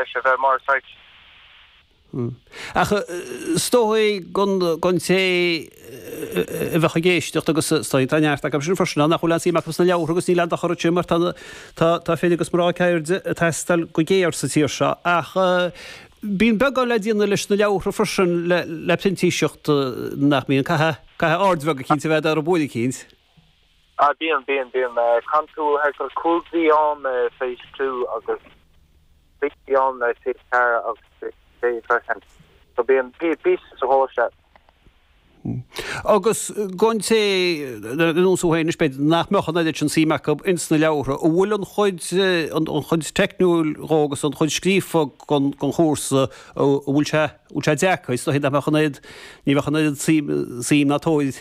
leis a bheith mar site. Ach is dóigh gon té a bheadh ag éisteacht agus is dóigh tá neart acu sin freisin ann nach bhfuil aon suim acu sna leabhartha agus níl aon dochar ansin mar tá fir agus mná ceirde ag teastáil go géar sa tír seo. Ach bíonn beagán le déanamh leis na leabhartha freisin le printíseacht nach mbíonn? Caithfidh aird bheag eicínt a bheith ar na books eicínt. Ah bíonn, bíonn, bíonn. Chaitheann tú thart fá chúig mhí i phase two agus trí mhí i phase ceathair agus sé mhí freisin. So bíonn píosa sa ghó se. Hm. Agus don té ar nós thú fhéin b'fhéidir nach mbeadh an oiread sin suim acu ins na leabhartha. An bhfuil an chuid, an chuid teicniúil dhó agus an chuid scríofa den, den chúrsa, an bhfuil sé, an bhfuil sé deacair? Is dóichí nach mbeadh an oiread, ní bheadh an oiread suim, suim sa teoiric.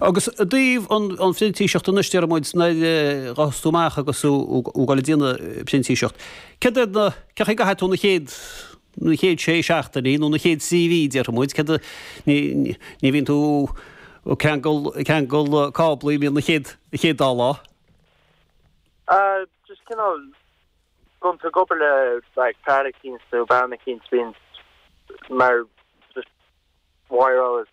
Agus i dtaobh an phrintíseacht anois, deir muid, nuair a ghabhfas tú amach agus tú ag déanamh printíseacht, céard iad na, cén chaoi a gcaithfidh tú na chéad, na chéad sé seachtainí nó na chéad trí mhí, déarfaidh muid, céard a, ní, ní bhíonn tú ag ceangal, ag ceangal cáblaí, b'fhéidir na chéad, na chéad dá lá. Ah, just cineál, gan tú ag obair le like fear eicínt nó bean eicínt, bíonn mar just wire all this.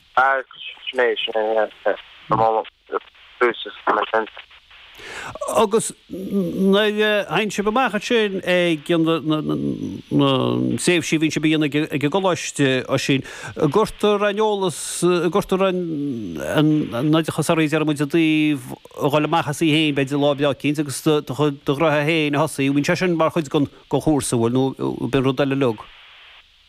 Agus nuair a théann sibh amach ansin ag na tréimhsí a bhíonn sibh a dhéanamh ag an gcoláiste, Oisín, an gcuirtear an t-eolas, an gcuirtear aon oideachas oraibh, déarfaimid, i dtaobh dhul amach asaibh féin, b'fhéidir lá breá eicínt agus do chuid, do ghraithe féin a thosaí, bíonn sé sin mar chuid den chúrsa, an bhfuil, nó ab in rud eile uilig?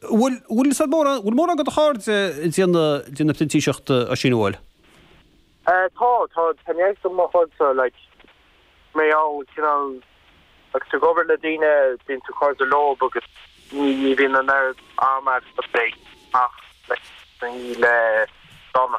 Bhuel, bhfuil, is dóigh, bhfuil mórán, bhfuil mórán de do chairde ag déanamh, déanamh printíseachta, Oisín, an bhfuil? Eh, tá, tá, tá neart de mo chuidse, like, mé ann, cineál, agus tú ag obair le daoine, bíonn tú cairde leob agus ní, ní bhíonn an oiread ama agat ach, like, le, dána.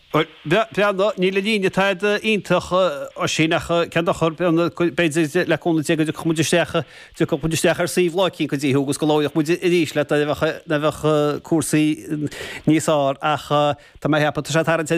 Bhuel, breathnaigh, níl an líne thar a bheith iontach, Oisín, ach cén dochar, breathnaigh, b'fhéidir le cúnamh Dé go dtiocfaidh muid isteach, dtiocfaidh muid isteach ar suíomh lá eicínt go dtí thú agus go labhróidh muid arís leat nuair a bheadh, nuair a bheadh cúrsaí níos fhearr ach tá mé ag ceapadh, tá sé ag tarraingt ar an